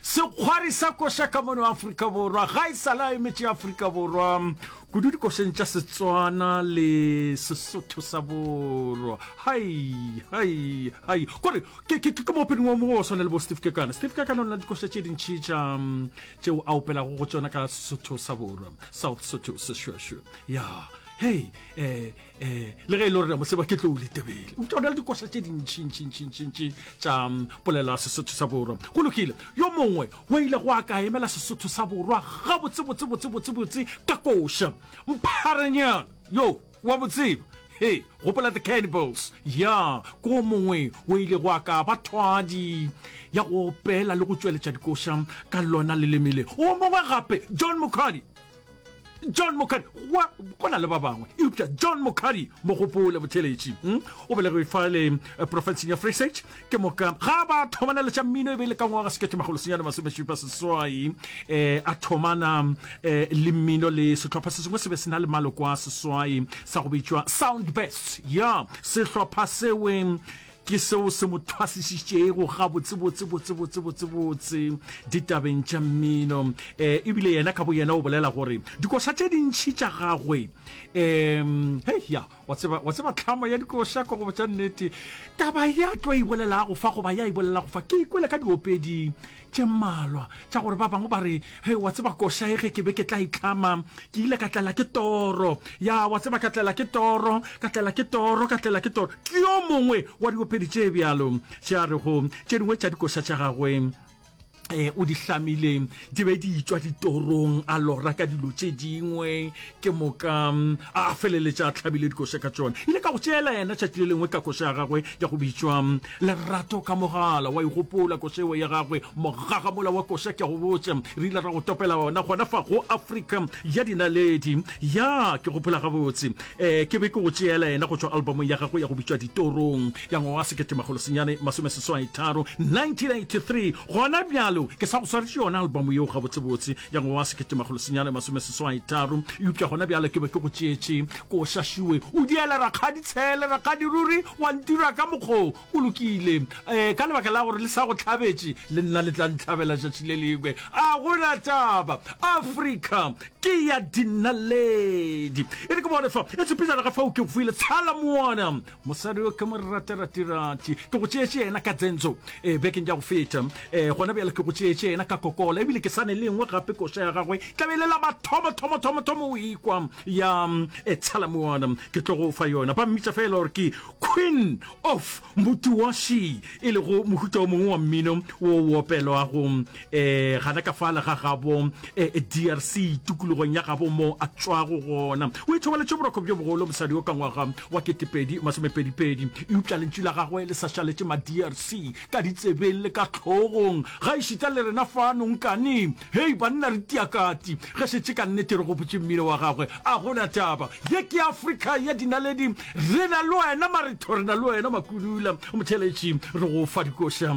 Sekgwari sa koša ka mono Afrika Borwa ga e sale a emetše Afrika Borwa, kudu dikošeng tša Setswana le Sesotho sa Borwa. Hai, hai, hai. Kore, ke, ke, ke moopedi wa mogo wa swana le bo Steve Kekana. Steve Kekana o na le dikoša tše dintši tša tšeo a opelago go tšona ka Sesotho sa Borwa, South Sotho, Sešwešwe. Ya, hei, eh, um le ge e le gore mo seba ke tlo o letebele o tšona le dikoša tše dintšhintšhintšhintšhintši tša mm, polelo ya sesotho sa borwa go lokile yo mongwe o ile go a ka emela sesotho sa borwa gabotsebotsebotsebotsebotse ka koša mpharanyana yo wa botseba he gopola the cannibals ya ko mongwe o ile go a ka ba thwadi ya go opela le go tšweletša dikoša ka lona le lemile o mongwe gape john mokgadi john mokari wa go na le ba bangwe eupša john mokari mogopole botheletši hmm? o belegwe fa le eh, profenseng ya free sage ke moka ga ba thomana le tša mmino e be e le ka ngwaga sekete magolo senyane masomešupa seswai um eh, a thomana um le mmino le sehlopha se sengwe se be se na le maloko a seswai sa go bitšwa sound best ya sehlopha seweng Ke seo se mo thwasišitšego gabotsebotse, botsebotse, botsebotse ditabeng tša mmino. Um ebile yena ka boyena o bolela gore dikoša tše dintšhi tša gagwe um hei ya wa tseba wa tseba tlhamo ya dikoša ka gobo tša nnete taba ya tlo e bolelago fa goba ya e bolelago fa ke ikwele ka diopedi tše mmalwa tša gore ba bangwe ba re, Hei, wa tseba, koša e, ge ke be ke tla itlama, ke ile ka tlela ke toro. Ya, wa tseba, ka tlela ke toro, ka tlela ke toro, ka tlela ke toro. Ke yo mongwe wa diopedi tše bjalo tše a rego tše dingwe tša dikoša tša gagwe o di hlamile di be di tšwa ditorong, a lora ka dilo tše dingwe, ke moka a feleletša a tlhabile dikoša ka tšona ile ka go tšeela yena tšatši le lengwe ka koša ya gagwe ya go bitšwa lerato ka mogala wa igopola koša eo ya gagwe mogagamola wa koša ke a go botša re ile ra go topela ona gona fa go afrika ya dinaledi ya ke gopola gabotse um ke be ke go tšeela yena go tšwa albumong ya gagwe ya go bitšwa ditorong ya ngwaga wa seketemagolosenyane masomeseswai tharo 1983 gona bjalo ke sa go swaretše yona albumo yeo gabotsebotse ya ngwaga wa seketemagolosenyane masomeseswai tharo eupša gona bjale ke be ke go tšeetše ko šašiwe o diele rakgadi tshele rakgadi ruri wa ntira ka mokgo o lokile um ka lebaka la gore le sa go tlhabetše le nna le tla ntlhabela šatši le lengwe a gona taba afrika ke ya dinaledi e re ke bone fa e tshepejana ga fao ke go file tshala moana mosadi yo ke mo ratiratirathi ke go tšeetše yena ka tsentsho e eh, bekeng ja go feta um gona bjale ke go tšeetše yena ka kokola ebile ke sane le nngwe gape koša ya gagwe tlabele la bathomothomothomothom o ikwa ya e eh, tshalamoana ke tlo go fa yona ba mmitsa fela gore ke queen of motuwashi e lego mohuta o mongwe wa mmino wo opelwago eh gana ka fala ga gabo eh, drc tukulogong ya gabo mo a tswago gona o ithobaletše boroko bjo bogolo mosadi o ka ngwaga wa ketepedi masomepedipedi eupša lentšu la gagwe le sa šaletše ma drc ka ditsebeng le ka tlhogong ga ešita le rena fano nkane hei banna re tiakati ge šetše ka nnete re gopotše mmino wa gagwe a gona taba ye ke afrika ya dinaledi re na le wena maretho re na le wena makulula motheletši re go fa dikoša